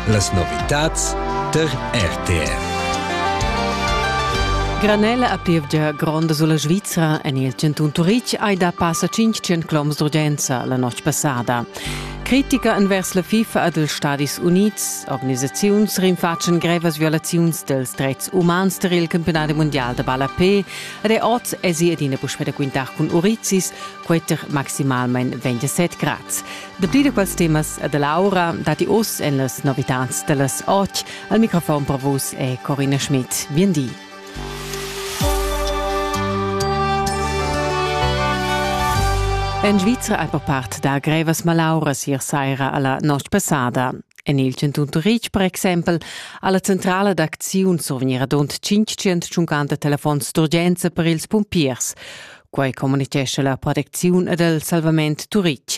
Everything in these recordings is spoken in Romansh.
Las novitads tar RTR. Granella a plevgia gronda sulla Svizra en il cantun Turitg hai da passa 500 km d'urgenza la notg passada. Critica envers la FIFA ed ils Stadis Unids, organisaziuns rinfatschen grevas violaziuns dels dretgs umans tar il campionat mundial da ballapé ed è oz esi adina puspè da quintar cun Urizis, queter maximalmain 27 grads. Dapli da quels temas e da l'aura datti oz en las novitads da las 8. Al microfon per vus è Corinna Schmidt. Bien di. En Svizra è per part da grevas malauras ier saira alla notte passada. En il Cantun Turitg, per exempel, alla centrala d'acziun survegnira dont 550 telefons d'urgenza per ils pumpiers. Quai communitgescha la protecziun ed il salvament Turitg.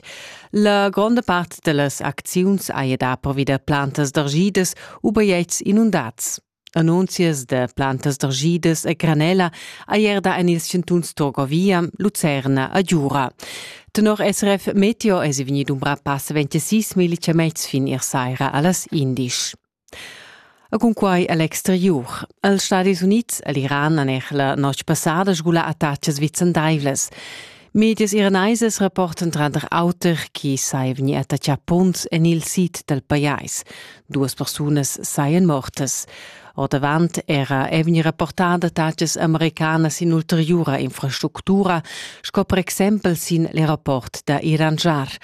La gronda part da las acziuns haja da pervi da plantas d'argidas u bajetgs inundats. Annunzias da plantas d'argidas e granella haja da en ils chantuns Torgovia, Lucerna e Giura. Tenor SRF Meteo è vegnì dumbrà passa 26 millimeters fin ier saira a las 11. E cunquai a l'exteriur. Els Stadis Unids e l'Iran han er la notg passada sgulà attacas vicendaivlas. Medias iranaisas rapportan tranter auter chi sai vegni attaccà punts en il sid dal pajais. Duas persunas sajan mortas. Ordavant era è vegni rapportada attacas americanas in ulteriura infrastructura, sco per exempel sin l'aeroport da Iranjar.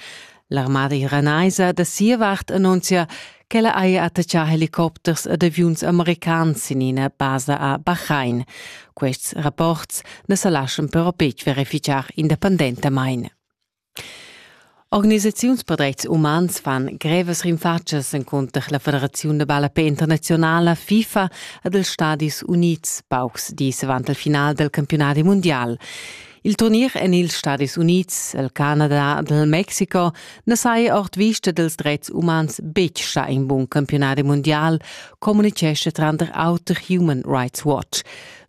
L'armada iranaisa da sia vart annunzia ch'ella haja attaccà helicopters ed aviuns americans sin ina basa a Bahrain. Quests rapports na sa laschan però betg verificar independentamain. Organisaziuns per dretgs umans fan grevas rinfatschas encunter la Federaziun da ballape internazionala FIFA ed els Stadis Unids paucs dis avant il final del campionadi mundial. Il turnier en ils Stadis Unids, il Canada ed il Mexico na saja ord vista dals dretgs umans betg stà in bun campiunadi mundial, communitgescha tranter auter Human Rights Watch.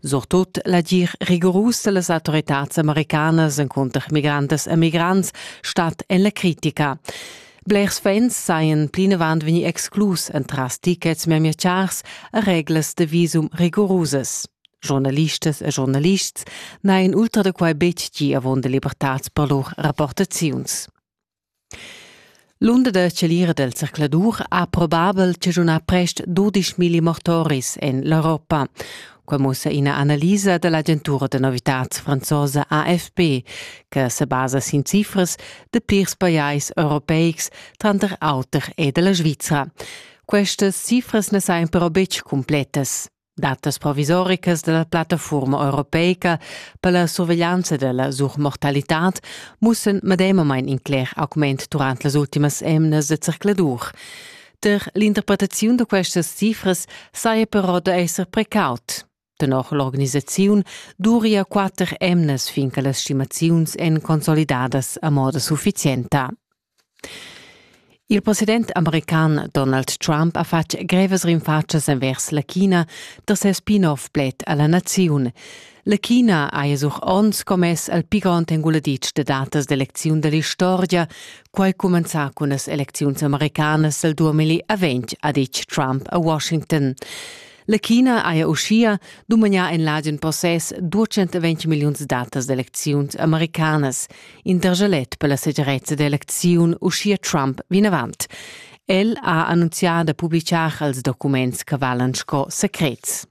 Surtut l'agir rigorus da las autoritads americanas encunter migrantas e migrants stat en la critica. Blers fans sajan plinavant vegni exclus entras tickets memia chars e reglas de visum rigorusas. Journalistas e journalists n'hain ultra da quai betg gì avunda libertads per lur rapportaziuns. L'unda da celira del circladur ha probabel chaschunà prest 12.000 mortoris en l'Europa. Quai mussa ina analisa da l'agentura da novitads franzosa AFP, che se basa sin cifras de plirs pajais europeics, tranter auter e della Svizzera. Questas cifras ne sain però betg completas. Datas provisoricas dalla plattafuorma europeica per la surveglianza della surmortalitad mussen medemamain in cler augment durant las ultimas emnas de zercladur. Der l'interpretaziun da questas cifras saja però da esser precaut. Tenor l'organisaziun duria quatter emnas fin che las stimaziuns èn consolidadas a moda sufficienta. Il president american Donald Trump ha fatg grevas rinfatschas envers la China da ses spin-off pled a la naziun. La China ha sur onns commess al pi grond enguladitsch da datas d'elecziun da l'istorgia, quai cumenzà cun las elecziuns americanas al 2020, ha ditg Trump a Washington. La China haja uschia dumagnà en l'agen possess 220 milliuns datas d'elecziuns americanas. In targelet per la segirezza d'elecziun uschia Trump vinavant. El ha annunzià da publitgar els documents che valan sco secrets.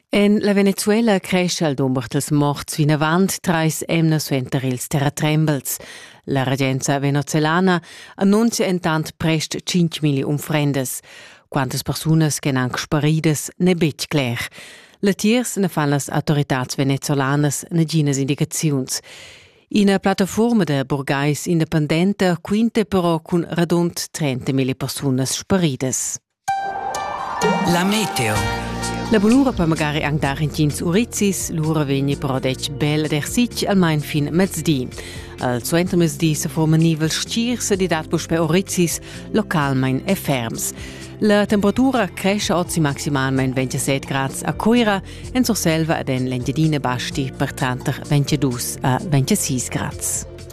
En la Venezuela crescha il dumber dals morts vinavant trais emnas suenter ils terratrembels. La regenza venezuelana annunzia entant prest 5.000 unfrendas. Quantas persunas che han sparidas n'è betg cler. Latiers na fan las autoritads venezolanas naginas indicaziuns. Ina plattaforma da burgais independenta quinta però cun radund 30.000 persunas sparidas. La meteo. La bulura per magari anc dar intgins urizis, lura vegni però detg bel ed ersitg almain fin mezdi. Al suentermezdi se forma nivel stgirs ed dat puspè urizis localmain e ferms. La temperatura cresce ozi maximalmain 27 grads a Coira, en Surselva ed en l'Engiadina basti per tranter 22 a 26 grads.